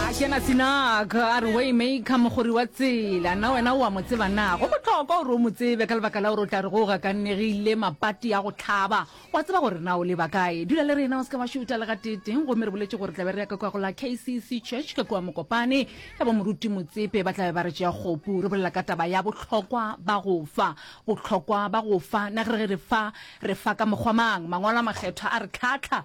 A kena Sinak a re Waymaker mogori wa tsela, na wena o a mo tseba na? Go bohlokwa gore o mo tsebe ka lebaka la gore o tla re go gakannegile mapati a go hlaba. O a tseba gore na o leba kae. Dula le rena o se ke wa šuta le gateetee gomme re boletše gore tla be re ya ka kua go la KCC Church ka kua Mokopane ya bo Moruti Motsepe ba tla be ba re tšea kgopu. Re bolela ka taba ya bohlokwa ba go fa. Bohlokwa ba go fa. Na ge re re fa re fa ka mokgwa mang? Mangwalo a Makgethwa a re tlhahla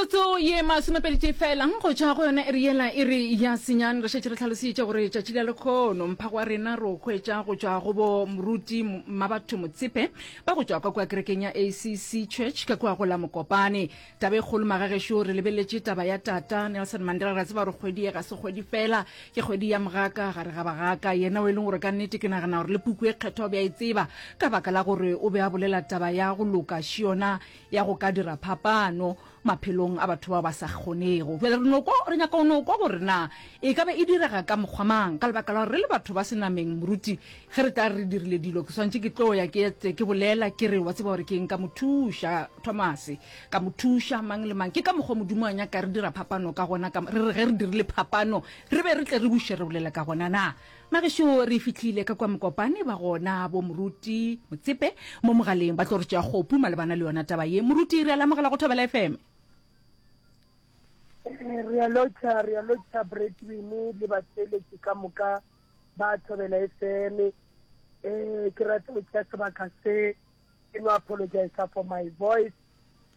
metsotso ye masomepedi tše felang go tšha go yona e re yela e re ya senyane re šetše re tlhalositše gore tšatši la lekgono mphago wa rena re o hwetša go tšwa go bo moruti mmabatho motshepe ba go tšwa ka kua kerekeng ya acc church ka kua go la mokopane taba e kgolo magagešo re lebeletše taba ya tata nelson mandela ra tseba gore kgwedi ye ga se kgwedi fela ke kgwedi ya mogaka gare ga bagaka yena o e leng gore ka nnete ke nagana gore le puku e kgethwa o be a e tseba ka baka la gore o be a bolela taba ya go loka šiona ya go ka dira phapano maphelong a batho bao ba sa kgonego jale re noko re nyaka o noko gore na e ka be e direga ka mokgwa mang ka lebaka la gore re le batho ba senameng moruti Ge re tla re dirile dilo, ke swantšhe ke tlo ya ke etse, ke bolela, ke re, wa tseba gore ke eng, ka mo thuša, Thomase, ka mo thuša, mang le mang. Ke ka mokgwa Modimo a nyaka re dira phapano ka gona, ka, re re ge re dirile phapano, re be re tle re buše re bolela ka gona. Na bagešo re fihlile ka kua mokopane ba gona, bo Moruti Motsepe mo mogaleng ba tlo re tšea kgopu malebana le yona taba ye. Moruti, re a le amogela go Thobela FM. Re a lotšha, re a lotšha Bretwin le batheeletši ka moka. ba thobela e feme um ke rata go tšea sebaka se ke no apologisa for my voice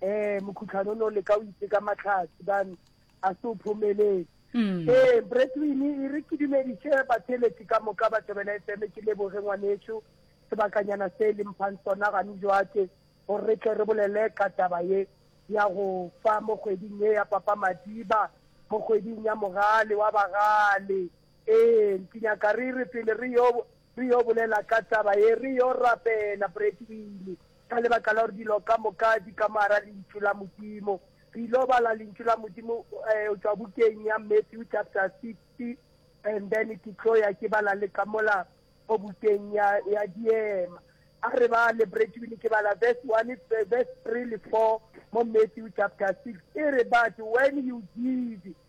um mokhutlhano o ne o leka o itse ka matlhatsi bane a se o phomelele um ee, bretwin e re ke dumediše batheletši ka moka ba thobela e feme ke leboge ngwanetšo sebakanyana se e leng phang sona gane joake gore re tle re bolele ka taba ye ya go fa mo kgweding ye ya papa madiba mo kgweding ya mogale wa bagale Ee, Mpinaka, re re pele re yo, re yo bolela ka taba ye, re yo rapela, Brett o ile. Ka lebaka la gore dilo ka moka di ka moara Lentšu la Modimo. Re ilo bala Lentšu la Modimo eh, o tšwa bukeng ya Matthew chapter 60, and then ke tlo ya ke bala le ka mola go bukeng ya, ya Diema. A re ba le Brett o ile ke bala verse 1, eh, verse 3 le 4 mo Matthew chapter 6. E re, but when you give,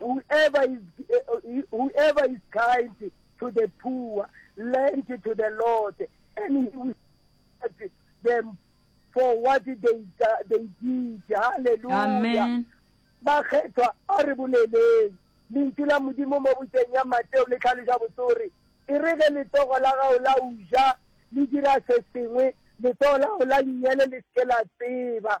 Whoever is, eh, whoever is kind to the poor lend to the Lord, and he will reward them for what they, do- they did. Hallelujah. amen bakgethwa a re boleleng lentšu la modimo mo boteng ya mateo le tlhaloša botsore e re ge letsogo la gago la uja le dira se sengwe letsogo la gago la lenyele le seke la tseba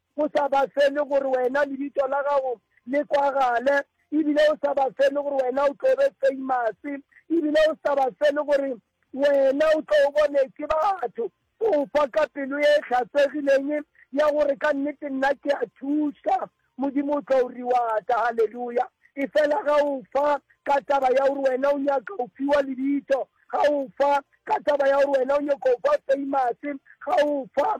O sa ba fe le gore wena lebitso la gago le kwagale, ebile o sa ba fe le gore wena o tlo be famous, ebile o sa ba fe le gore wena o tlo bone ke batho. O fa ka pelo e hlasegileng ya gore ka nnete nna ke a thuša, Modimo o tlo o reward-a. Haleluya! Efela ga o fa ka taba ya gore wena o nyaka go fiwa lebitso, ga o fa ka taba ya gore wena o nyaka go ba famous, ga o fa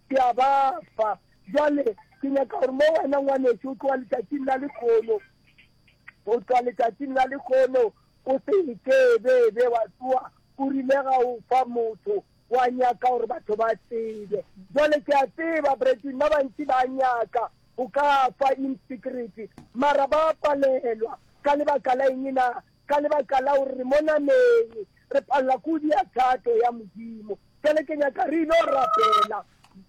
Ke a ba fa. Bjale, ke nyaka gore mo wena, ngwanešu, go tloga letšatšing la lekgono, go tloga letšatšing la lekgono, o se ke be be wa tsoa o rile ga o fa motho wa nyaka gore batho ba tsebe. Jwale ke a tseba, Bretton, ba bantši ba nyaka go ka fa in secret, mara ba palelwa. Ka lebaka la eng na? Ka lebaka la gore re mo nameng, re palela kudu ya thato ya Modimo. Bjale ke nyaka re ilo rapela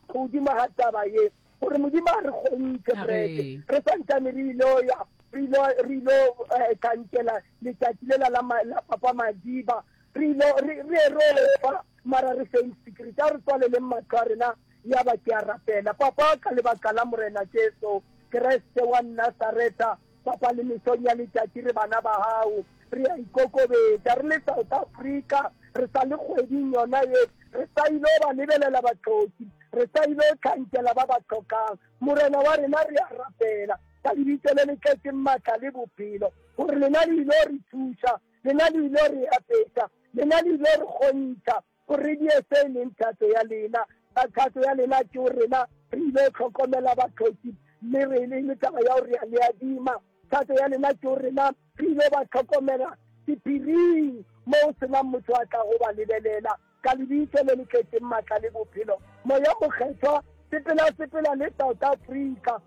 godimo ga taba ye, gore Modimo a re kgontšhe brete, re sa ntšane re ilo ya, re ilo, re ilo eh, tšhantšela letšatši lela la, ma, la Papa Madiba, re ilo, re, re erofa, mara re seng secret. A re tswaleleng mahlo a rena, ya ba ke a rapela. Papa, ka lebaka la Morena Jesu Kriste wa Nasaretha, Papa, le mesong ya letšatši re bana ba gago, re a ikokobetša, re le South Africa, re sa le kgweding yona ye, re sa il'o ba lebelela bahloki, re sa il'o hlankela ba ba hlokang. Morena wa rena, re a rapela, ka Lebitso le le tletšeng matla le bophelo, gore Lena le il'o re thuša, Lena le il'o re apeša, Lena le il'o re kgontšha. O re di efe e leng thato ya lena? Ka thato ya lena ke o rena re ile o tlhokomela bathoki mme re le le taba ya o re a le adima. Thato ya lena ke o rena re ile ba tlhokomela sephiring mo o senang motho a tla go ba lebelela. Ka lebitso le le tletseng matla le bophelo, Moya Mokgethwa, sepela sepela le South Africa.